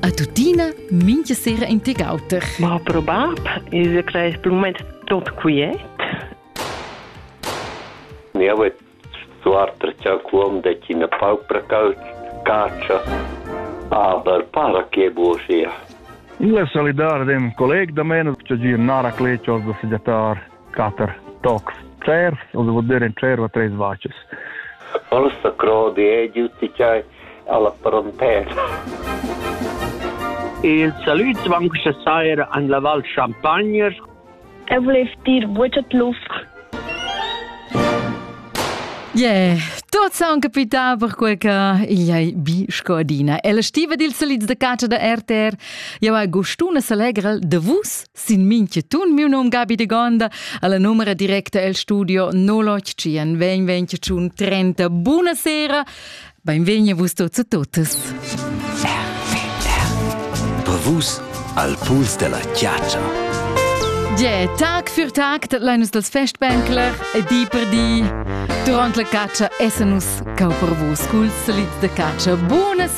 A tuttina mincha sera in teg auter. Ma pro bab, il crees per moment tot quiet. Ne avet suartra cha quom de cina paupra caccia. Aber para che buosia. Il solidar dem colleg da meno che gir nara clecios da segiatar. Quatter tocs tschervs, ussa vul dir in tscherva treis vacas. Orsa crodi è giuti chai alla frontera. Il salut van questa saira an la Val Champagne. Eu volev dir buccia tlufr. Yeah, tot sound capità perquei che igl ei bi sco adina. E la stiva dils salids da catscha da RTR, jau hai gustuna s'allegra de vus Sin minchetun miu nom Gabi de Gonda, alla numera directa el studio 081 20 30. Buonasera, benvegni vus tots e totes. Per vus al puls della chiaccia. Yeah, tag für tag dat lein dals Festbänkler e di per di. Durant la caccia essa nus cau per vus cul salit de caccia. Buonasera.